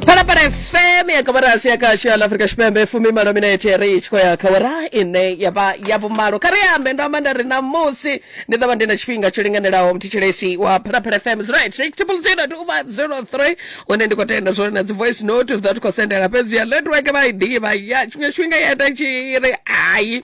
phalaphala fm ya kamarasi ya kasho ya la afrika tshipembe fumi malo minete ya ri tshi khou ya khawara ine ya vha ya vhumalo kha ri ambe ndo amba nda ri na musi ndi ḓo vha ndi na tshifhinga tsho linganelaho mthetshelesi wa phalaphala fm is right six triple zero two five zero three hune ndi khou tenda zwone na dzi voice note zwa ti khou sendela fhedzi ya network vha i ḓivha ya tshiṅwe tshifhinga ya ita tshi ri hayi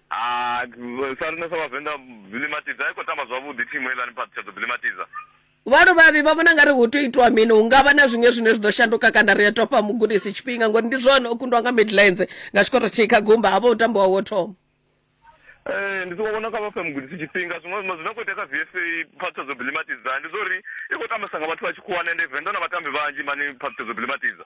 Hai, sa riṋe sa Vhavenḓa Bilimatidza a i khou tamba zwavhuḓi thimu heiḽani Phaḓi tsha ḓo Bilimatidza. Vhaluvhavhi vha vhona nga ri hu tea u itwa mini? Hu nga vha na zwiṅwe zwine zwi ḓo shanduka kana ri a tou fha mugudisi tshifhinga ngori ndi zwone o kundwa nga Midlands nga tshikho thithihi kha gumba ha vha hu tambo wawe wo thoma. Ee, ndi songo vhona kha vha fhe mugudisi tshifhinga. Zwiṅwe zwiṅwe zwine khou itea kha VSA Phaḓi tsha ḓo Bilimatidza ndi zwa uri i khou tambesa nga vhathu vha tshikhuwani ende Venḓa na vhatambi vhanzhi mani Phaḓi tsha ḓo Bilimatidza.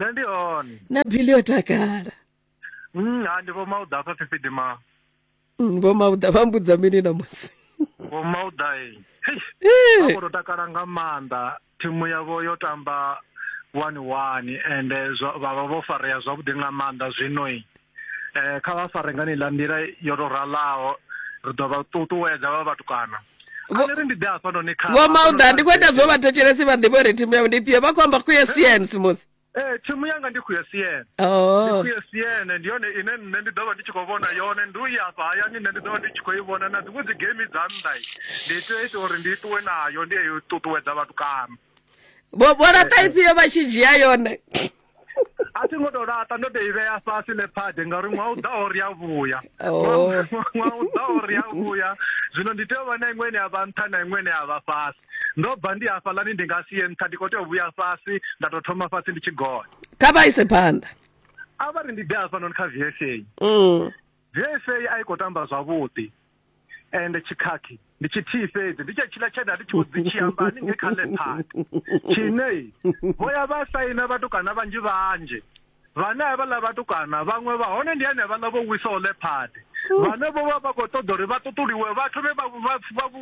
nṋe ndi hone na bili yo takala Mm, ha ndi vho mauda afha fifidi ma Mm, vho mauda vha mbudza mini namusi vho mauda e Eh. vha khoto takala nga maanḓa thimu yavho yo tamba wani wani ende zwa- vha vha vho farea zwavhuḓi nga maanḓa zwino i eh kha vha fare ngani ḽa nḓila yo to ralaho ri ḓo vha ṱuṱuwedza vha vhatukana ri ndi ḓe hafha noni kha vho mauda ndi khou ita zwo vha thetshelesi vha ḓivhe uri thimu yavho ndi fhio vha khou amba khou ya siens musi Eh thimu yanga ndi khuya siene. Oh. Ndi khuya siene ndi yone ine nṋe ndi ḓo vha ndi tshi khou vhona yone ndi u ya afha hayani nṋe ndi ḓo vha ndi tshi khou i vhona na dziṅwe dzi game dza nnḓa ndi tea ita uri ndi ṱuwe nayo ndi yo ṱuṱuwedza vhatukana. vho vho laṱa ifhio vha tshi dzhia yone a thi ngo tou laṱa ndo tou i vhea fhasi lephade ngauri ṅwaha u ḓaho ri a vhuya oh. ṅwaha u ḓaho ri a vhuya zwino ndi tea u vha na iṅwe ine ya vha nṱha na iṅwe ine ya vha fhasi ndo bva ndi hafhaḽani ndi nga si ye nṱha ndi khou tea u vhuya fhasi nda tou thoma fhasi ndi tshi gonya kha vha ise phanḓa a vha ri ndi ḓe hafhanoni kha vsa vsa mm. a i khou tamba zwavhuḓi ende tshikhakhi ndi tshithihi fhedzi ndi tshetshiḽa tshe nda ndi tshi vho dzi tshi amba haningei kha lephaka tshine vho ya vha saina vhatukana vhanzhi vhanzhi vhane a vhaḽa vhatukana vhaṅwe vha hone ndi ane vhaḽa vho wisaho lephade vhane vho vha vha khou ṱoḓa uri vha ṱuṱuliwe vha thome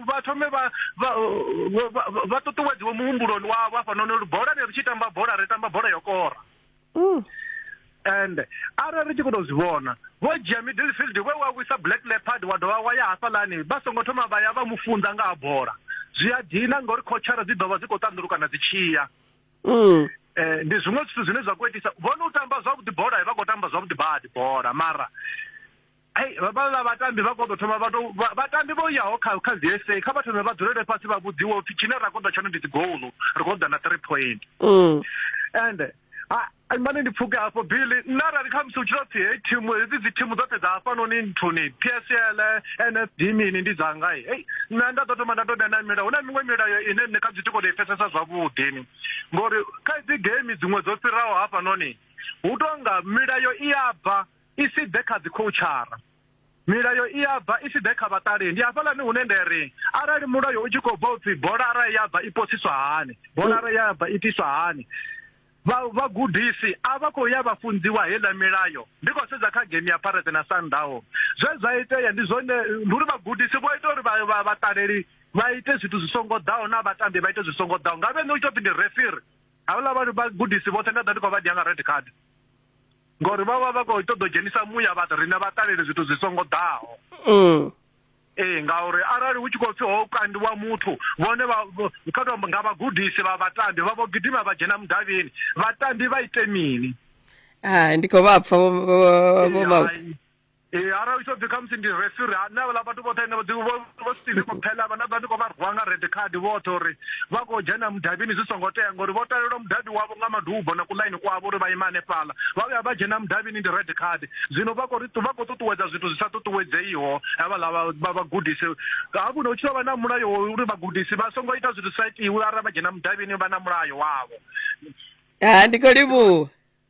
vha thome vha ṱuṱuwedziwe muhumbuloni wavho hafhanoni uri bola ne ri tshi tamba bola ri tamba bola yo kora mm. and arali ri tshi khou tou zwi vhona vho dzhia middle field we wa wisa black leopard wa dovha wa ya hafhalani vha songo thoma vha ya vha mu funza nga ha bola zwi a dina ngauri khotshara dzi ḓo vha dzi khou ṱanḓulukana dzi tshiya mm. eh, ndi zwiṅwe zwithu zwine zwa khou itisa vhone u tamba zwavhuḓi bola vha khou tamba zwavhuḓi badi bola mara Ai, vha vha ḽa vhatambi vha koḓo thoma vha tou vha- vhatambi vho yaho kha kha dzi SA kha vha thome vha dzulele fhasi vha vhudziwa upfi tshine ra koḓa tshone ndi dzi goal ri khou ḓa na 3 point Mm. and ha- ai, mane ndi pfuke hafho billy nṋe arali kha musi u tshi tou pfi hei thimu hedzi dzi thimu dzoṱhe dza hafhanoni nthuni psl nsd mini ndi dzanga hei hei nṋe nda ḓo thoma nda tou vhea na milayo hu na miṅwe milayo ine nṋe kha zwithu ko tou i pfesesa zwavhuḓi ni ngori kha dzi game dziṅwe dzo fhiraho hafhanoni hu tonga milayo i ya bva i si ḓe kha dzikhoutshara. Milayo i a bva i si ḓe kha vhaṱaleli. Ndi hafhaḽani hune nda ri, Arali mulayo u tshi khou bva u pfi bolara ya bva i posiswa hani, bolara ya bva i tiswa hani, vha vhagudisi a vha khou ya vha funziwa heiḽa milayo. Ndi khou sedza kha game ya Pirates na Sundowns, zwe zwa itea ndi zwone, ndi uri vhagudisi vho ita uri vhaṱaleli vha ite zwithu zwi songo ḓaho na vhatambi vha ite zwi songo ḓaho. Ngavhe nṋe hu tshi tou pfi ndi refiri, havhaḽa vhagudisi vhoṱhe nda ḓa ndi khou vha dia nga red card. Ngori vha vha vha khou ṱoḓa u dzhenisa muya vhathu riṋe vha ṱalele zwithu zwi songo ḓaho. Mm. Ee ngauri arali hu tshi khou pfhi ho kandiwa muthu vhone vha kha tou nga vhagudisi vha vhatambi vha vho gidima vha dzhena mudavhini vhatambi vha ite mini? Hai ndi khou vha pfa vho vho vho vho. Ee, arali u tshi ḓi khamusi ndi refiri ha nṋe havhala vhathu vhoṱhe ene vho ḓi- vho- vho steve maphela vha nda ḓa ndi khou vha rwa nga red card vhoṱhe uri vha khou dzhena mudavhini zwi songo tea ngori vho talelwa mudavhi wavho nga madubo na kuḽaini kwavho uri vha ima hanefhala vha vhuya vha dzhena mudavhini ndi red card zwino vha khou ri vha khou ṱuṱuwedza zwithu zwi sa ṱuṱuwedzeiho havhala vha- vha- vhagudisi hafhu no tshi tou vha na mulayo wa uri vhagudisi vha songo ita zwithu zwi sa itiwi arali vha dzhena mudavhini vha na mulayo wavho ha ndi khou livhuwa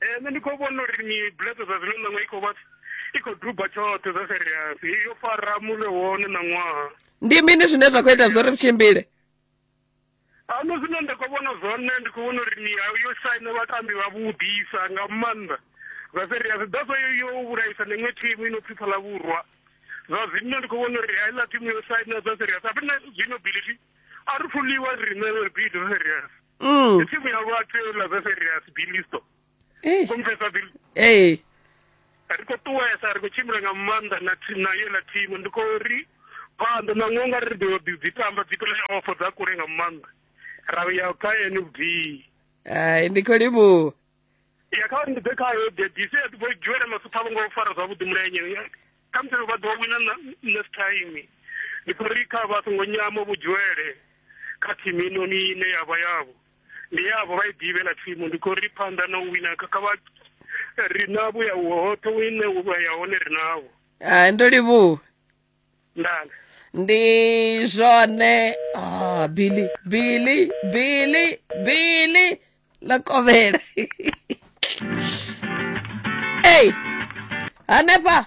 eh, nṋe ndi khou vhona uri mibuleto zwa zwino ṋaṅwa i khou vha i khou duba tshoṱhe zwa serious yo fara mune wone ṋaṅwaha ndi mini zwine zwa khou ita zwo ri tshimbile ano zwine nda khou vhona zwone ndi khou vhona uri mihayo yo saina vhatambi vha vhudisa nga maanḓa zwa serious daso yo vhulaisa neṅwe thimu ino pfipfa ḽa vhurwa zwa zwino ndi khou vhona uri heiḽa thimu yo saina zwa serious apena zwino bilithi a ri fuliwa riṋe uri bido serious mm. tsimu ya vhathu la zeserias bilisto Eish. komfesa bil ee ri khou ṱuwesa ri khou tshimbila nga maanḓa na thi- na yeḽa thimu ndi khou ri phanḓa na ngo nga ri ḓo ḓi dzi tamba dzi play off dza kule nga maanḓa ra ya kha nfd ai ndi khou livhuwa ya kha ndi ḓe khayo debisi ya ḓivho dzhiwela masupha vho ngo fara zwavhuḓi mulenye khamusi vha ḓo wina na- next time ndi khou ri kha vha songo nyama vhudzhiwele kha thimu inoni ine ya vha yavho ndi yavho vha i ḓivhe na thimu ndi khou ri phanḓa na u wina kha vha ri navho ya hoṱhe ine wa ya hone ri navho hai ndo livhuwa ndana ndi zwone ah, billy billy billy billy ḽa kovhela ei hanefha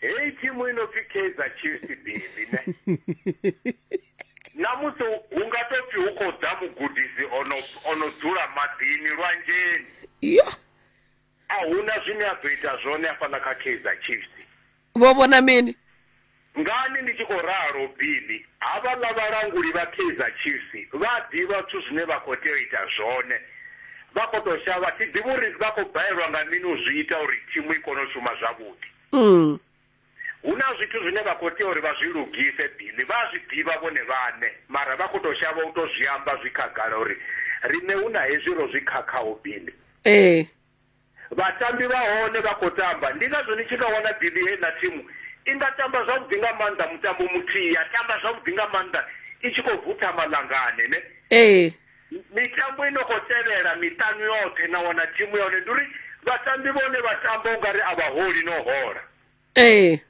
heyi thimu i no pfi kaizer chiefs bili ne namusi hu nga to pfi hu khou ḓa mugudisi ono ono dzula maḓini lwanzheni yo a huna zwine a ḓo ita zwone hafhaḽa kha kaizer chiefs vho vhona mini ngani ndi tshi khou ralo bili Havhaḽa vhalanguli vha Kaizer Chiefs vha a ḓivha zwithu zwine vha khou tea u ita zwone. Vha khou tou shavha, a thi ḓivhi uri vha khou balelwa nga mini u zwi ita uri thimu i kone u shuma zwavhuḓi. Hu na zwithu zwine vha khou tea uri vha zwi lugise, Billy. Vha a zwi ḓivha vhone vhaṋe, mara vha khou tou shavha u tou zwi amba zwi khagala uri riṋe hu na hezwi ro zwi khakhaho, Billy. Ee. Vhatambi vha hone vha khou tamba, ndi ngazwo ni tshi nga wana Billy heiḽa thimu i nga tamba zwavhuḓi nga maanḓa mutambo muthihi, ya tamba zwavhuḓi nga maanḓa i tshi khou vutha malanngane ne. Ee. Mitambo i no khou tevhela miṱanu yoṱhe na wana thimu ya hone, ndi uri vhatambi vha hone vha tamba u nga ri a vha holi na u hola. Ee.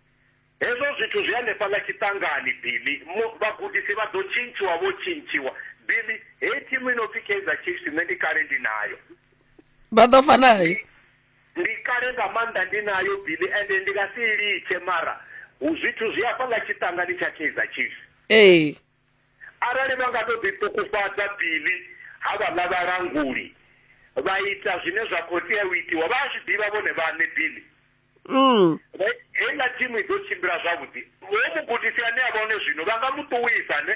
Hezwo zwithu zwi hanefhaḽa tshiṱangani, Billy. Mu, vhagudisi vha ḓo tshintshiwa, vho tshintshiwa. Billy, heyi thimu i no pfi Kaizer Chiefs nṋe ndi kale ndi nayo. Vha ḓo fa nayo. Ndi kale nga maanḓa ndi nayo, Billy, ende ndi nga si i litshe, mara hu zwithu zwi hafhaḽa tshiṱangani tsha Kaizer Chiefs. Ee. Arali vha nga tou ḓiṱukufhadza, Billy, havhaḽa vhalanguli vha ita zwine zwa khou tea u itiwa, vha a zwi ḓivha vhone vhaṋe, Billy. mm. heiḽa thimu i ḓo tshimbila zwavhuḓi ho mugudisi ane a vha hone zwino vha nga mu ṱuwisa ne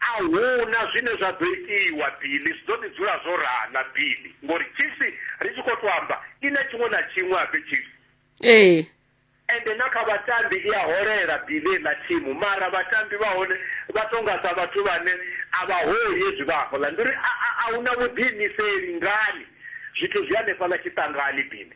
a huna zwine zwa ḓo itiwa bili zwi ḓo ḓi dzula zwo rana bili ngori chiefs ri tshi khou to amba i na tshiṅwe na tshiṅwe abe chiefs ee ende na kha vhatambi i a holela bili ḽa thimu mara vhatambi vha hone vha tonga sa vhathu vhane a vha holi hezwi vha hafhaḽa ndi uri a huna vhuḓiimiseli ngani zwithu zwi hanefhaḽa tshiṱangani bili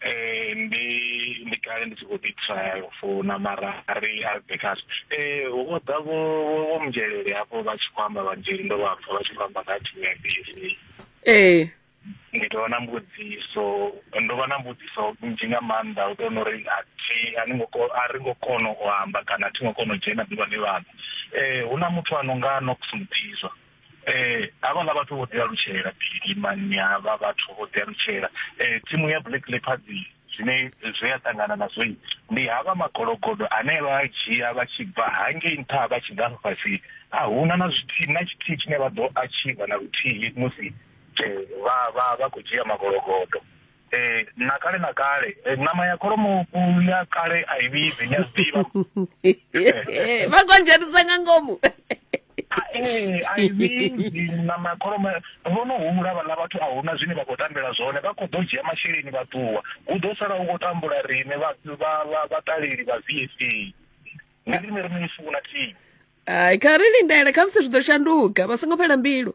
eh ndi ndi kale ndi tshi khou ḓi trial for na mara ari ari backup eh wo ḓa vho vho mdzhelele hafho vha tshi khou amba vhanzheli ndo vha pfa vha tshi khou amba nga thimu ya BC ee ndi tou vha na mbudziso ndo vha na mbudziso nnzhi nga maanḓa u tou nori a thi a ni ngo ko- a ri ngo kona u amba kana a thi ngo kona u dzhena ḓuvha ḽi vhaḓa eh hu na muthu a no nga Nox Mutizwa Eh, havhala vhathu vho ḓialutshela phili mani havha vhathu vho ḓialutshela eh, thimu ya black leopards zwine zwe ya ṱangana nazwo ndi havha magologodo ane vha a dzhia vha tshi bva hangei nṱha vha tshi ḓa afha fhasi a huna na zwithihi na tshithihi tshine vha ḓo achiva na luthihi musi eh, vha vha vha khou dzhia magologodo Eh, na kale na kale eh, nama ya kholomo u- ya kale a i vhibvi ni a zwi ḓivha vha khou dzhenisa nga ngomu Ah, eh, a i vhibvi nama ya kholomo vho no humula vhaḽa vhathu a huna zwine vha khou tambela zwone vha khou ḓo dzhia masheleni vha ṱuwa hu ḓo sala hu khou tambula riṋe vha- vha- vha- vhaṱaleli vha vsc ndi riṋe ri no i funa thihi hai kha ri lindele khamusi zwi ḓo shanduka vha songo fhela mbilu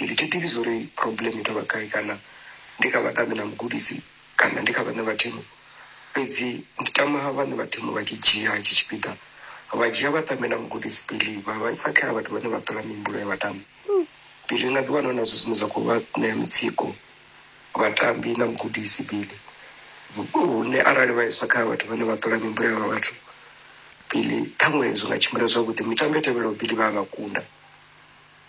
Ndi thi ḓivhi zwori problem i tou vha gai kana ndi kha vhatambi na mugudisi kana ndi kha vhaṋe vha thimu, fhedzi ndi tama vhaṋe vha thimu vha tshi dzhia hetshi tshipiḓa vha dzhia vhatambi na mugudisi pele vha vha isa kha vhathu vhane vha ṱola mihumbulo ya vhatambi. Pele na ḓi wana huna zwithu zwine zwa kho vha ṋea mutsiko vhatambi na mugudisi pele hune arali vha iswa kha vhathu vhane vha ṱola mihumbulo ya vhathu pele ṱhaṅwe zwi nga tshimbila zwavhuḓi mitambo i tevhelaho pele vha a vha kunda.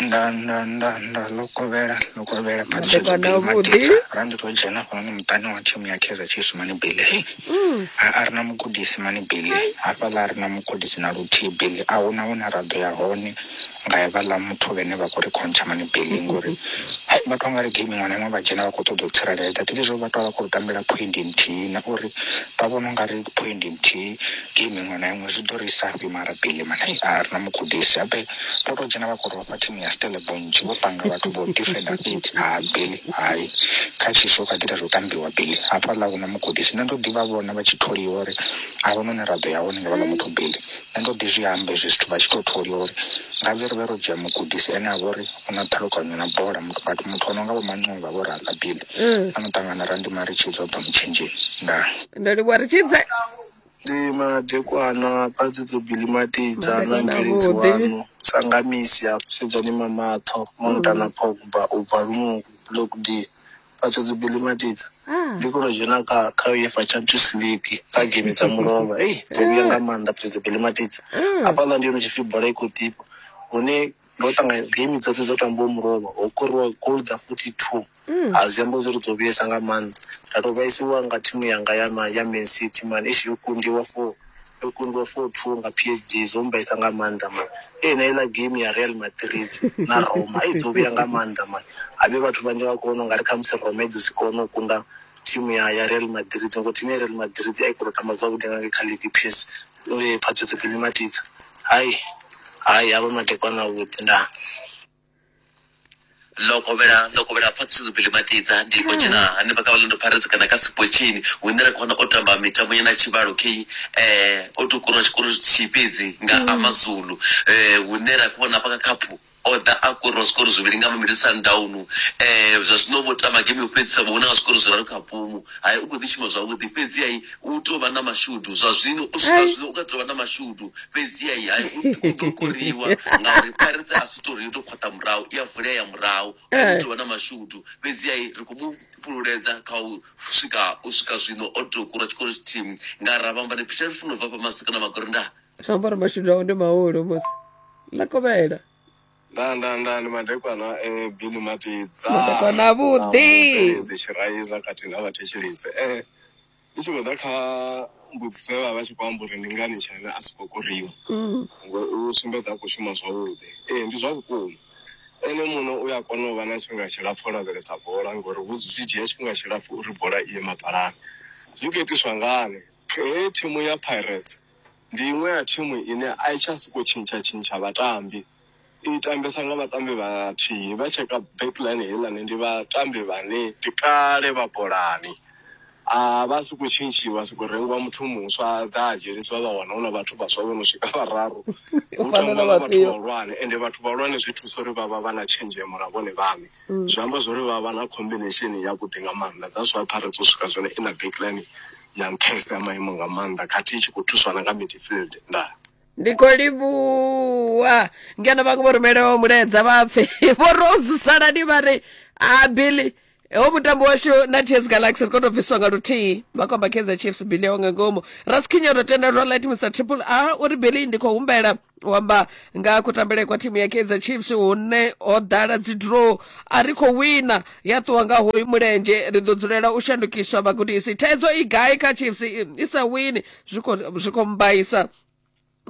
nda nda nda nda ḽo kovhela ḽo kovhela Maḓuvhana avhuḓi. ra ndi to dzhena hafhanoni muṱani wa thimu ya kaizer chiefs mani bile a a ri na mugudisi mani bile hafhaḽa a ri na mugudisi na luthihi bile a huna hune ra ḓo ya hone nga hevhaḽa muthu vhene vha khou ri khontsha mani bile ngori hai, vha tou nga ri geimi iṅwe na iṅwe vha dzhena vha khou ṱoḓa u tsireledza thingi zwo vha tou vha khou ri tambela phoindi nthihi na uri vha vhona u nga ri phoindi nthihi geimi iṅwe na iṅwe zwi ḓo ri isa fhi mara bile mani a ri na mugudisi habe vho to dzhena vha kho rofha thimu ya stellebonch vho panga vhathu vho defender fhedzi ha beli hai kha tshisho kha ḓita zwo tambiwa beli hafhaḽa huna mugudisi nṋe ndo ḓivha vhona vha tshi tholiwa uri a huna hune ra ḓo ya hone nga vhala muthu beli nṋe ndo ḓi zwi amba hezwi zwithu vha tshi to tholiwa uri nga vhe ri vhe ro dzhia mugudisi ene a vha uri u na ṱhalukanyo na bola vhathu muthu o no nga vho mancova vho raḽa beli a no ṱangana randima ri tshi dzwa bva mutshenzheni ndaa ndo livhuwa ri tshi dze Ndi madekwana badzi dzo bilimatidza na Madekwana mubveledzi avhuḓi. waṋu Sangamisi a fusedzani mamatho Monta na Pogba u bva Lunungu Block D badzo dzo bilimatidza Ah. ndi kho to dzhena kha kha UEFA Champions League kha game dza mulovha ei dzo vhuya nga maanḓa badzo dzo bilimatidza hafhaḽa ndi hone tshipfi bola i khou ḓifha hune ndo ṱanganya game dzoṱhe dzo tambiwa mulovha ho koriwa gol dza 42 mm. a zwi amba zwi ri dzo vhuyesa nga maanḓa nda tou vhaisiwa nga thimu yanga ya ya man city man ishi yo kundiwa for yo kundiwa for two nga p s g zwo mbaisa nga maanḓa man ee na iḽa game ya real madrid na roma i dzo vhuya nga maanḓa man a vhe vhathu vhanzhi vha kona u nga ri khamusi roma i ḓo si kone u kunda Thimu ya ya Real Madrid ngo thimu ya Real Madrid a i khou tamba zwavhuḓi nga ngei kha league PS uri phadzo dzi khou ṋimatidza hai hai havha madekwana avhuḓi ndaa ndo kovhela ndo kovhela phatsizo bili matidza ndi khou dzhena hanefha kha vhalendo pirates kana kha sipotshini hune ra khona o tamba mitambo ya na tshivhalo kei um o tou kurwa tshikoro tshithihi fhedzi nga amazulu um hune ra khou vhona hafha kha khaphu O ḓa a kora zwikoro zwivhili nga mavhili Sundownu. Um zwa zwino vho tamba game yo fhedzisa vho wina nga zwikoro zwiraru kha pumu. Hai u khou ḓi shuma zwavhuḓi fhedzi-hai u tou vha na mashudu zwa zwino u swika zwino u kha ḓi tou vha na mashudu fhedzi-hai hai u ḓ- u ḓo koriwa ngauri Pirates a si tou ri yo tou khwaṱha murahu i a vulea ya murahu hai u tou vha na mashudu fhedzi-hai ri khou mu fhululedza kha u swika u swika zwino o tou kora tshikoro tshithihi nga ra vhamba ni phitshani funo bva fha masika na magorenda zwi ambara mashudu awe ndi mahulu musi ḽa kovhela nda nda nda ndi madekwana eh, bini matidza Madekwana avhuḓi. tshiraiza khathihi na vhathetshelisi eh ndi tshi khou ḓa kha mbudziso ye vha vha tshi khou amba uri ndi ngani tshaina a si khou koriwa Mm. ngo u sumbedza a khou shuma zwavhuḓi ee ndi zwa vhukuma ene muno u a kona u vha na tshifhinga tshilapfu o lavhelesa bola ngori vhu zwi dzhia tshifhinga tshilapfu uri bola i ye mapalani zwi khou itiswa ngani ee thimu ya pirates Ndi iṅwe ya thimu ine a i tsha sokou tshintsha-tshintsha vhatambi. I tambesa nga vhatambi vhathihi. Vha tsheka back line heiḽani ndi vhatambi vhane ndi kale vha bolani. A vha sokou tshintshiwa, ha sokou rengiwa muthu muswa a ḓa a dzhenisiwa vha wana hu na vhathu vhaswa vho no swika vhararu. Hu tambiwa nga vhathu vhahulwane ende vhathu vhahulwane zwi thusa uri vha vha vha na tshenzhemo na vhone vhaṋe. Zwi amba zwo ri vha vha na combination yavhuḓi nga maanḓa. That's why Pirates yo swika zwino i na back line. ya nṱhesa ya maimo nga maanḓa khathihi tshi khou thuswa na nga midfield ndaa ndi khou livhuwa ngeno vhaṅwe vho rumelaho mulaedza vha pfe vho rozusalani vha ri a ah, billy ho mutambo washu na ts galaxy ri koto bviswa nga luthihi makomba kaizer chiefs billy yawo nga ngomu raskhinya ro tenda zwa light mr triple a uri billy ndi khou humbela u amba nga ha kutambele kwa thimu ya kaizer chiefs hune ho ḓala dzi draw a ri khou wina ya ṱuwa nga hoyu mulenzhe ri ḓo dzulela u shandukiswa vhagudisi thaidzo i gai kha chiefs i sa wini zwi khou mbaisa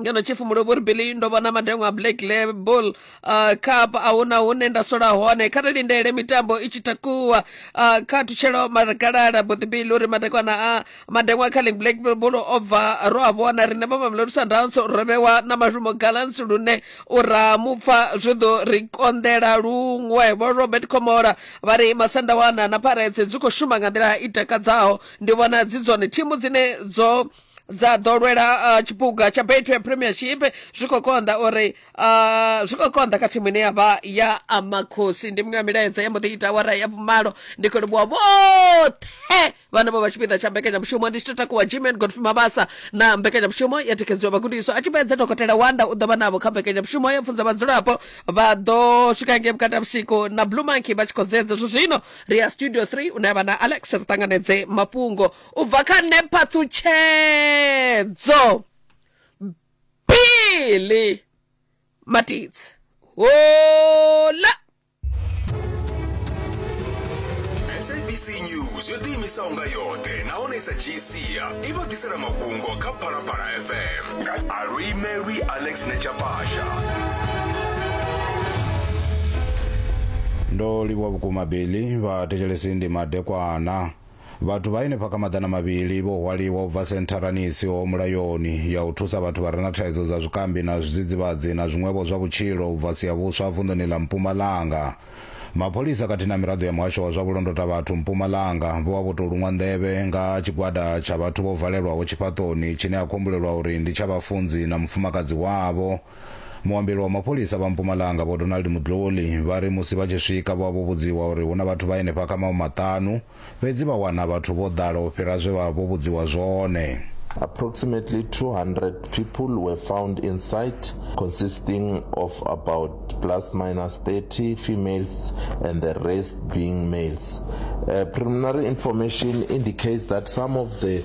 ngeno tshifumulovhori billy ndo vhona madengo a black label uh, cup a huna hune nda sola hone kha ri lindele mitambo i tshi takuwa uh, kha thutshelo magalala boḓibili uri madekwana a madengwa kha ling black bull o bva ro a vhona riṋe vha mamelodi sundowns ro vhewa na mashumo galans lune u ra mupfa zwi ḓo ri konḓela luṅwe vho robert comola vha ri masandawana na pirates dzi khou shuma nga nḓila i takadzaho ndi vhona dzi dzone thimu dzine dzo dza ḓo lwela uh, tshiphuga tsha betway premiership zwi khou konḓa uri uh, zwi khou konḓa kha thimu ine ya vha ya amakhosi ndi miṅwe ya milaedza ya mbo ḓi ita wara ya vhumalo ndi khou livhuwa vhoṱhe vhane vho vha tshipiḓa tsha mbekanyamushumo ndi tshi to takuwa gman godfrey mabasa na mbekanyamushumo ya thikedziwa vhagudiswa a tshi fhedza dokotela wanda u ḓo vha navho kha mbekanyamushumo ya pfunza vhadzulapo vha ḓo swika nge vhukati ha vhusiku na blue monkey vha tshi khou dzedza zwo zwino ri ya studio 3 une vha na alex ri ṱanganedze mafhungo u bva kha nṋe phaṱhutshedzo bili matidzi hola sabc news yo ḓiimisaho nga yoṱhe nahone sa gsia i vha ḓisela mafhungo kha phalaphala fm nga alwimelwi alex nechapasha ndo livhuwa vhukuma beli vhathetshelesi ndi madekwana Vhathu vha henefha kha maḓana mavhili vho hwaliwa u bva sentharani i siho mulayoni ya u thusa vhathu vha re na thaidzo dza zwikambi na zwidzidzivhadzi na zwiṅwevho zwa vhutshilo u bva Siyabuswa vunḓuni ḽa Mpumalanga. Mapholisa khathihi na miraḓo ya muhasho wa zwa vhulondotavhathu Mpumalanga vho vha vho tou luṅwa nḓevhe nga tshigwada tsha vhathu vho valelwaho tshifhaṱoni tshine ha kho humbulelwa uri ndi tsha vhafunzi na mufumakadzi wavho Muambeli wa mapholisa vha Mpumalanga Vho Donald Mudloli vha ri musi vha tshi swika vho vha vho vhudziwa uri hu na vhathu vha henefha kha mawe maṱanu, fhedzi vha wana vhathu vho ḓala u fhira zwe vha vha vho vhudziwa zwone. Approximately 200 people were found inside, consisting of about plus minus 30 females and the rest being males. Uh, preliminary information indicates that some of the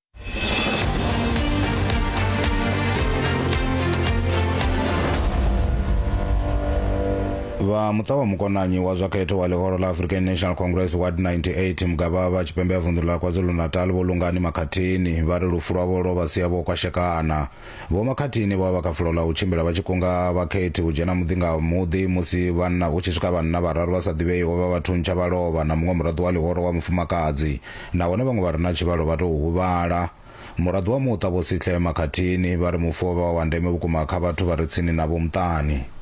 vha muṱa wa mukonanyi wa zwa khetho wa ḽihoro ḽa african national congress ward 98 mugavha vha tshipembe ya vunḓu ḽa kwazulu-natal vho lungani makhathini vha ri lufu lwavho lwo vha sia vho kwashekana Vho Makhathini vho vha vha kha fulo ḽa u tshimbila vha tshi kunga vhakhethi u dzhena muḓi nga muḓi musi vhanna hu tshi swika vhanna vhararu vha sa ḓivheiho vha vha thuntsha vha lovha na muṅwe muraḓo wa ḽihoro wa mufumakadzi nahone vhaṅwe vha re na tshivhalo vha tou huvhala. Muraḓo wa muṱa Vho Sihle Makhathini vha ri mufu o vha wa ndeme vhukuma kha vhathu vha re tsini navho muṱani.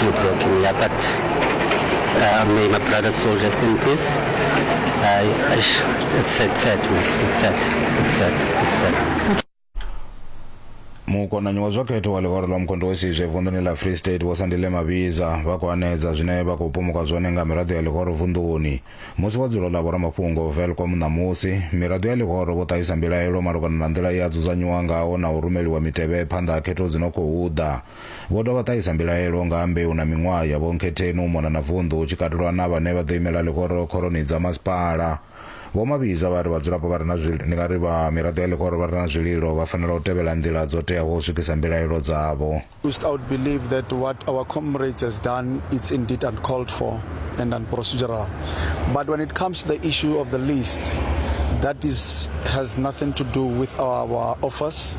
Good work in there, but uh, may my brother soul rest in peace. I, I sh- it's sad, sad, miss. It's sad, it's sad, it's sad. mukonanyi wa zwa khetho wa ḽihoro ḽa mukhondo wa sizwe vunḓuni ḽa free state vho sandile mavhiza vha khou anedza zwine vha khou pumuka zwone nga miraḓo ya ḽihoro vunḓuni musi wa dzulo ḽa vhoramafhungo velcom ṋamusi miraḓo ya ḽihoro vho ṱahisa mbilaelo malugana na nḓila ye a dzudzanyiwa ngaho na u rumeliwa mitevhe phanḓa ha khetho dzi no khou ḓa Vho dovha ṱahisa mbilaelo nga ha mbeu na miṅwaha ya vhonkhetheni u mona na vunḓu hu tshi katelwa na vhane vha ḓo imela ḽihoro khoroni dza masipala. Vho Mabhiza vha ri vhadzulapo vha re na zwililo, ndi nga ri vha miraḓo ya ḽihoro vha re na zwililo vha fanela u tevhela nḓila dzo teaho u swikisa mbilaelo dzavho. We stout believe that what our comrades has done it's indeed uncalled for and unprocedural but when it comes to the issue of the list that is has nothing to do with our office.